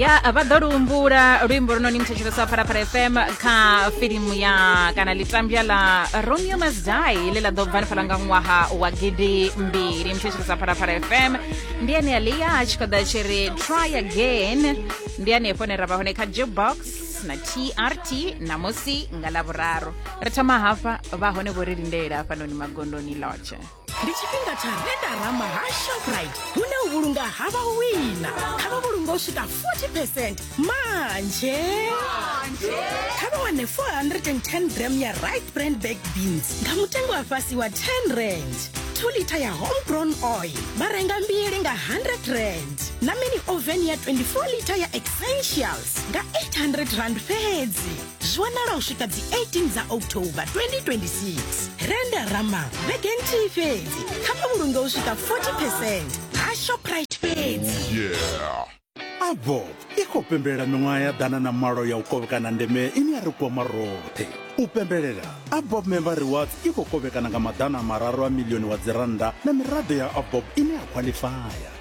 ya vha ḓo luhumbula luimbo lunoni muthetshelesa wa phalaphala fm kha filimu ya kana litambya la romeo must die ḽe ḽa ḓo bva nifhala nga ṅwaha wa gidi mbili muthetshelesa phalaphala fm ndi ane a lia a tshi khou ḓa tshi ri try again ndi anefho ne ra vha hone kha jukebox na trt namusi nga lavhuraru ri thoma hafha vha hone vho ri lindela hafhanoni magondoni lodge ndi tshifhinga tsha vendarama ha shoprite hune u vhulunga ha vha wina kha vha vhulunga u swika 40 percent manje kha vha wane 410 gram ya right brand baked beans nga mutengo wa fhasi wa 10 rand 2 lita ya homegrown oil vha renga mbili nga 100 rand na mini oven ya 24 lita ya essentials nga 800 rand fhedzi zwi wanala u swika dzi 18 dza october 2026 renda rama vhege nthihi fhedzi kha vha vhulunge u swika 40 percent ha shoprite fhedzi avo i khou pembelela miṅwaha ya ḓana na malo ya u kovhekana ndeme ine ya ri kwama roṱhe u pembelela abob member rewards i khou kovhekana nga maḓana mararu a milioni wa dzirannda na miraḓo ya abob ine ya khwaḽifaya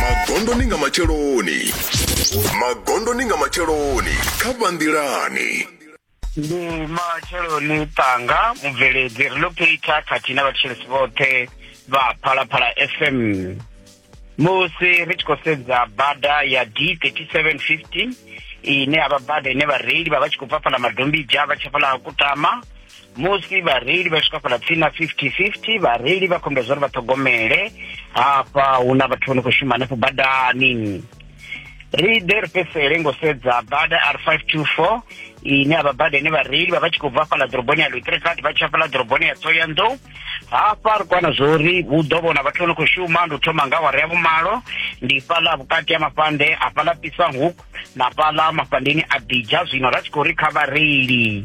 magondoni nga matsheloni magondoni nga matsheloni kha vhanḓilani ndi matsheloni tanga mubveledzi ri ḽo phitha khathihi na vhathetshelesi vhoṱhe vha phalaphala fm musi ri tshi khou sedza bada ya d 3715 ine ya vha bada ine vhareili vha vha tshi khou bva fhala madombija vha tshi fhala kutama musi vhareili vha swika fhala tsini na 50-50 vhareili vha khombedza uri vha ṱhogomele hafha hu na vhathu vho no khou shuma hanefho badani ri ḓe ri fhedzisele ngo sedza bada r 524 ine avha bada ine vhareili vha vha tshi khou bva fhala ḓoroboni ya lutrekati vha tsha fhala ḓoroboni ya tsoyanḓou hafha ri kwana zwo uri hu ḓo vhona vhathu vho no khou shuma ndi u thoma nga wara ya vhumalo ndi fhala vhukati ha mafhande a fhala pisang hook na fhala mafhandeni a bidja zwino ra tshi khou ri kha vhareili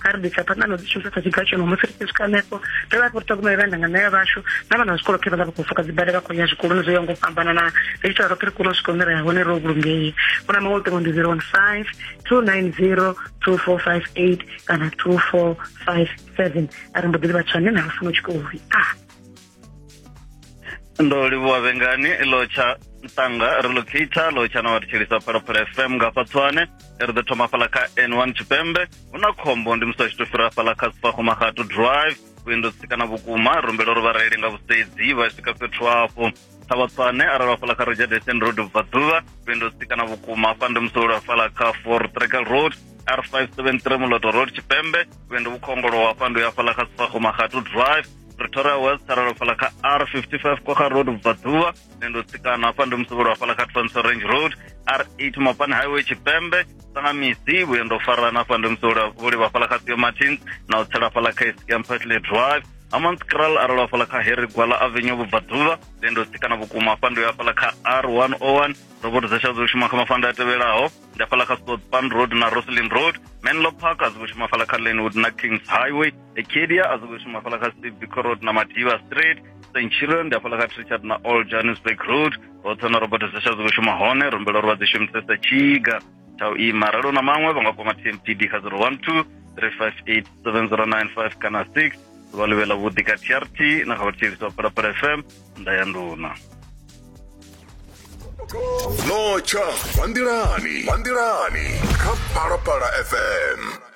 kha ri bvisa phanḓa na dzi shumisa sa tshiga tshono musi ri tshi swika hanefho ri vha ri ṱhogomela vha ndanga naya vhashu na vhana zwikolo khe vha ḽa vha khou fuka dzibada vha khou ya zwikoloni zwo ya ngo fhambana na ri ita roṱhe ri kone u swika hune ra ya hone ro vhulungei hu na maṅwe luṱingo ndi zero one five two nine zero two four five eight kana two four five seven a ri mbo ḓi livha tshanḓe na lufuna u tshi khou ri a ndo livhuwa vhengani lo tsha ntanga relocator lo tsha na wa thetshelisa phalaphala fm nga hafha tswane ri ḓo thoma fhala kha n one tshipembe hu na khombo ndi musi a tshi to fhira fhala kha sifahomahatu drive vhuendo sikana vhukuma rumbela uri vhareili nga vhusedzi vha swika fhethu hafho ṱhavhatswane arali vha fhala kha regedesten road bva ḓuvha vhuendo sikana vhukuma hafha ndi musi ulwa fhala kha for tregal road r five seven three muloto road tshipembe vhuendo vhukhongolowa hafha ndi u ya fhala kha sifahomahatu drive pretoria west aralo fhala kha r 55 kwa kha road vhaḓuvha nṋe ndo tsikana hafha ndi musevhelo hafhala kha twanso range road r 8 mapani highway tshipembe sanga misi vhuye ndo farana hafha ndi musevhelo vhulivha hafhala kha theo martins na u tsela hafhala kha escam petley drive Amans Kral aralo hafhala kha Harry Gwala Avenue vhubvaḓuvha then ndo tsikana vhukuma hafha ndo ya hafhala kha R101 robot dza tsha dzo shuma kha mafanda a tevhelaho ndi hafhaḽa kha sopan road na roslin road menlo park a zwi khou shuma hafhaḽa kha lenwood na kings highway acadia a zwi khou shuma hafhaḽa kha civico road na madiva street st children ndi hafhaḽa kha trichard na all johannesburg road hoṱhe na robert zesha a zwi khou shuma hone rumbela uri vha dzi shumisesa tshiga tsha u ima ralo na maṅwe vha nga kwama tmpd kha 012 358 7095 kana 6 ḓuvha ḽivhe ḽa vhuḓi ka trt na kha vhathetshelesi wa phalaphala fm nda ya nduna notsha vha nḓilani vha nḓilani kha phalaphala fm